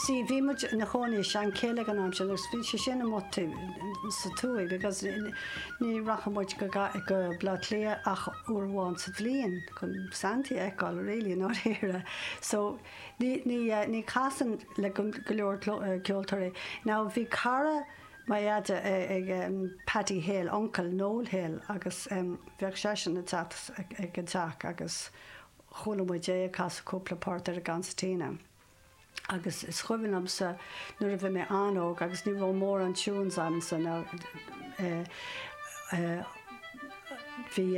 Sea, bhí muid inár gcónaí i Seanchill ag an am sin agus bhí sé sin amuigh faoin tuaith because ní rachadh muid go go Bleá Cliath ach uair amháin sa mbliain chun Santaí a fheiceáil really i ndáiríre so ní ní eh, ní casann le go go leor eh, ceoltóirí. Now bhí cara mo dheaide eh, ag um, Paddy Hill, uncail Noel Hill agus um, bheadh seisean ag teacht ag an teach agus chuala muid é ag casadh cúpla port ar an gconsairtín agus is cuimhin liomsa nuair a bhí mé an-óg agus ní raibh mórán tunes agamsa bhí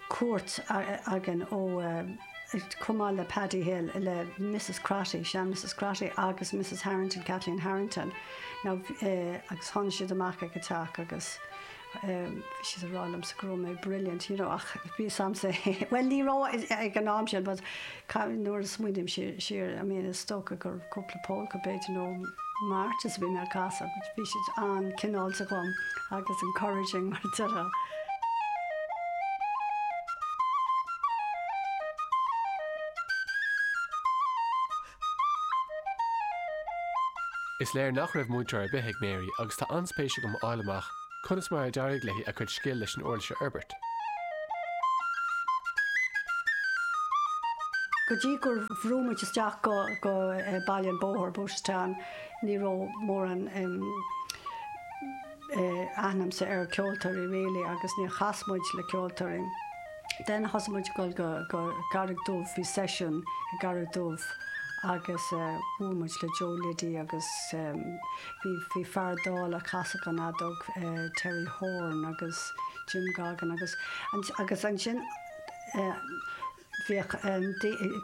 cuairt againn ó chomh maith le Paddy Hill le Mrs Crotty, sean Mrs Crotty agus Mrs Harrington, Kathleen Harrington, now agus tháinig siad amach ag an teach agus. siad ag rá liomsa go raibh mé brilliant you know ach bhí fhios a'msa bhuel ní raibh ag an am sin but nuair a smaoiním siar I mean is dócha gur cúpla polka b'fhéidir nó marches a bhí mé ag casadh but bhí siad an-chineálta dhom agus encouraging mar a déarfá. Is léir nach raibh múinteoir ar bith ag Mary agus tá an-spéis agam a fháil amach conas mar a d'éirigh léi a cuid scil leis an uirlis a fhorbairt. Go dtí gur bhog muid isteach go Baile an Bhóthair, Booterstown, ní raibh mórán. aithne a'msa ar cheoltóirí really agus níor chas muid le ceoltóirí then thosaigh muid ag dul go go Carraig Dubh bhí session i gCarraig Dubh agus bhuail muid le Joe Liddy agus bhí bhí fear dall a chasfadh an fheadóg Terry Horne agus Jim Goggin agus agus ansin bhíodh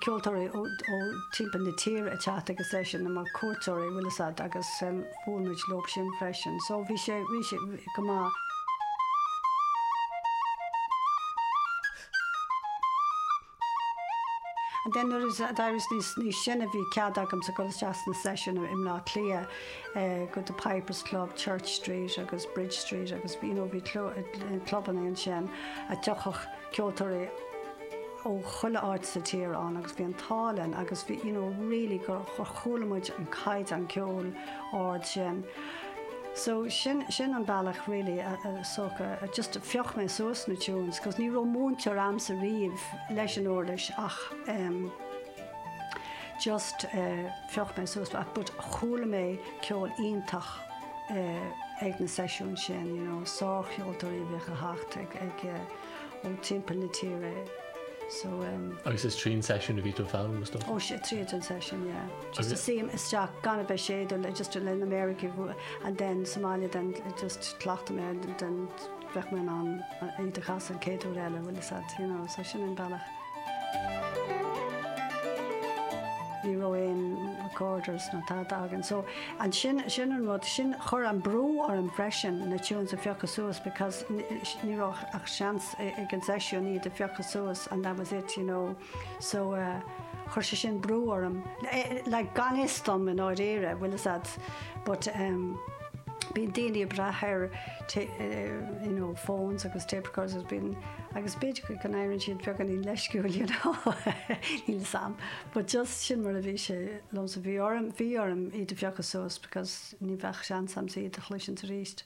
ceoltóirí ó timpeall na tíre ag teacht agus é sin mar cuairteoirí an bhfuil fhios agat agus bhuail muid leo sin freisin so bhí sé go maith. And then nuair a d'éirigh mé níos sine bhí cead agamsa dul isteach sna seisiúin i mBleá Cliath go The Pipers Club, Church Street agus Bridge Street agus you know bhí clubanna ansin a dtiocfadh ceoltóirí ó chuile áit sa tír ann agus bhí an t-ádh orainn agus bhí you know really gur chuala muid an caighdeán ceoil ard sin so sin sin an bealach really a a soc a just phioc mé suas na tunes cos ní raibh múinteoir a'msa riamh leis an uirlis ach em just eh phioc mé suas but chuala mé ceol iontach. ag na seisiúin sin, you know, sárcheoltóirí a bhíodh ag teacht ag, ag, ó timpeall na tíre, so umm. Agus is tríd an seisiún a bhí tú ag foghlaim agus dócha? Ó, tríd an seisiún, yeah. Just shuínn isteach, gan a bheith ag séideadh, just le na méaraigh a bhua, and then sa mbaile then just chleachtadh mé then, bheadh mé in ann iad a chasadh an chéad uair eile, bhuel that's it, you know, so sin an bealach. Ní raibh aon recorders nó tada againn, so ansin, sin an rud, sin chuir an brú orm freisin na tunes a phiocadh suas because ní raibh ach seans ag an seisiún iad a phiocadh suas and that was it, you know. So, chuir sé sin brú orm, like gan fhios dom i ndáiríre, bhfuil fhios a'd, but ehm bíonn daoine ag brath ar you know phones agus tape recorders agus bíonn, agus b'fhéidir go n-éireann siad beagáinín leisciúil you know, níl fhios a'm, but just sin mar a bhí sé liomsa, bhí orm, bhí orm iad a phiocadh suas because ní bheadh seans a'msa iad a chloisint aríst.